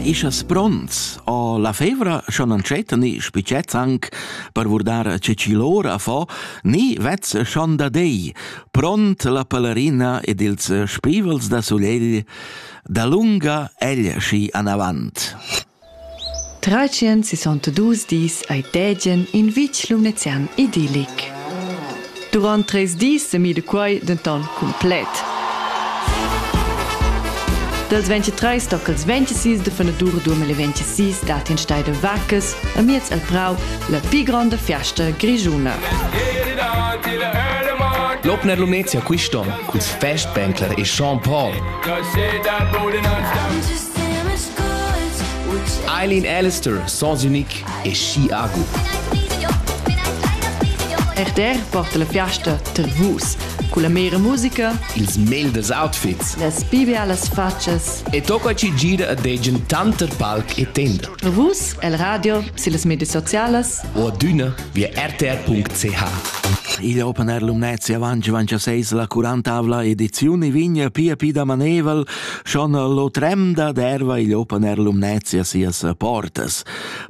Ischas pronts o la fevra scha non c'eta ni spicets anc per vurdar che ci l'ora fa, ni vez schon da dei, pront la pelerina ed ils spivels da sulegl da lunga egl schi anavant. 362 dis ei Dägen in vitg lumnezian idillic. Durant treis dis semida quei denton cumplet. Dals 23 tocals 26 de fenadur 2026 dat in stei de vaccas a miez al prau la pli gronda fiasta grigiuna. L'Opner Lumnezia quist'on culs Festbänkler e Jean Paul. Eileen Alistair, Sans Unique e Chiago. RTR porta la fiasta tar vus con la mera musica, ils mail dels outfits, las bibialas facas e tocca ci gira a degen tanter palc e tender. Vus el radio, sillas medias socialas o adüna via rtr.ch. Igl Open Air Lumnezia avanci avanci a seis la 40 edizione vigna pia pi da maneval Schon l'otrem da derva igl open air Lumnezia sias portas.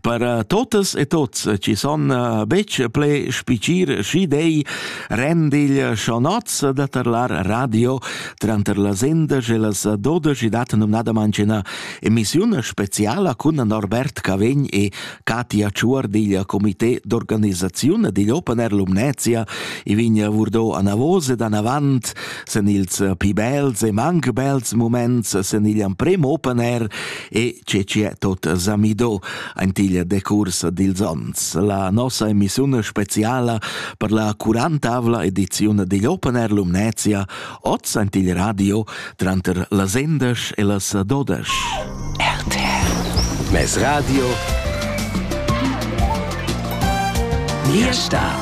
Per eh, totas e tots ci son eh, bec ple spicir schi dei rendigl schonotz da tarlar radio tranter las endash e las dodash dat numnada mancina emissiun speciala cun Norbert Cavegn e Katia Tschuor digl comité d'organisaziun digl Open Air Lumnezia e vign vurdo anavos ed anavant sen ils pi bels e manc bels moments sen igl amprem Open Air e ce c'è tot zamido ant igl decurs dils ons. La nossa emissiun speciala per la 40 ediziun digl Open Air Lumnezia Oz sent il radio tranter las endesch e las dodesch. RTL. Mes radio. Mia stad.